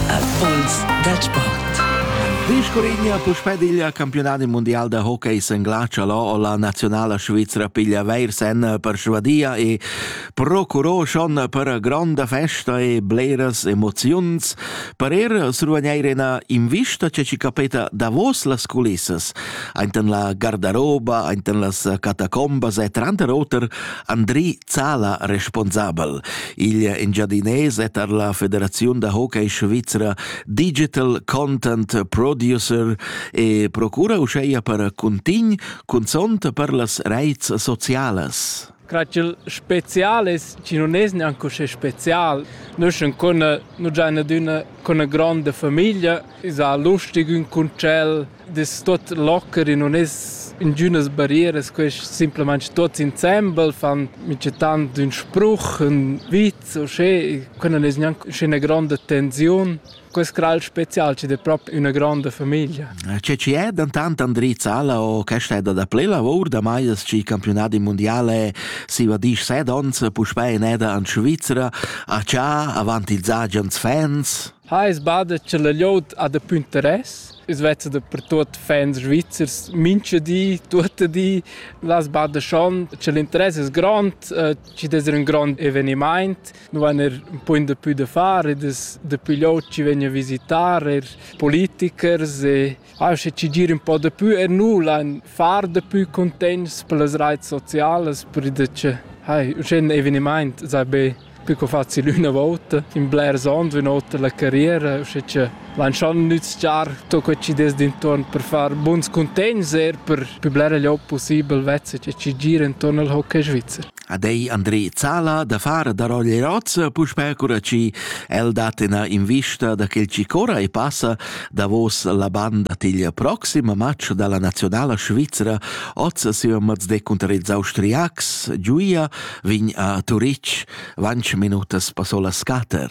Impuls dal sport. Riscurigna puspè il campionat mondial da hockey sin glatsch o la nazionala svizra piglia veir sen persvadia e procurò schon per gronda festa e bleras emoziuns per er survagneir ena invista che ci capeta davos las culissas ainten la gardaroba, ainten las catacombas e tranter oter Andri Zala responsabel. Il engiadinais è tar la Federaziun da hockey svizra Digital Content Producer e procura uscheia per cuntign cunzont per las reits socialas. Cratgel speziales chi non es neanche uschè spezial. Nus schon con nu già adüna con 'na gronda famiglia, is a lustig ün concel, das tot locker non es ingünas barrieras, quest simplamaing tots insembel fan micetant ün spruch, ün vit o sche, que non es gnanc üschè gronda tensiun. Questo è il speciale, c'è proprio una grande famiglia. C'è ci è dentant Andri Zala o questa è da play lavor da mai il campionato mondiale si va disch set ons puspè in eda in Svizzera a c'ha avanti ils Agians fans? Ha es bada cha la glieud ha dapü interess. I's vezza dapertuot fans svizzers mincha di, tuot i di. Là sbada schon cha l'interess es grond, chi dess ir ün grond evenimaint. Nu vain eir ün pugn dapü da far ed es dapü glieud chi vegn a visitar, eir politikers e Aschi chi gir ün po dapü e nu l'han far dapü cuntents per las raits socialas, perda cha hai uschè ün evenimaint sai be be co facil üna vouta, in blers ons, üna ota la carriera, uschè cha l'han schon nüzchar tot quel chi dess d'intuorn per far buns cuntegns, eir per pü blera gliob pussibel vezza cha chi gira intuorn al hockey svizzer. Ad ei André Zala da far da Roglierozza puspè cura chi el dat ina invista da quel chi corra e passa davos la banda tigl proxim match dalla nazionala svizra oz siam mats de cunter ils austriacs giuia vegn a Turitg vanch minutas passo la scater.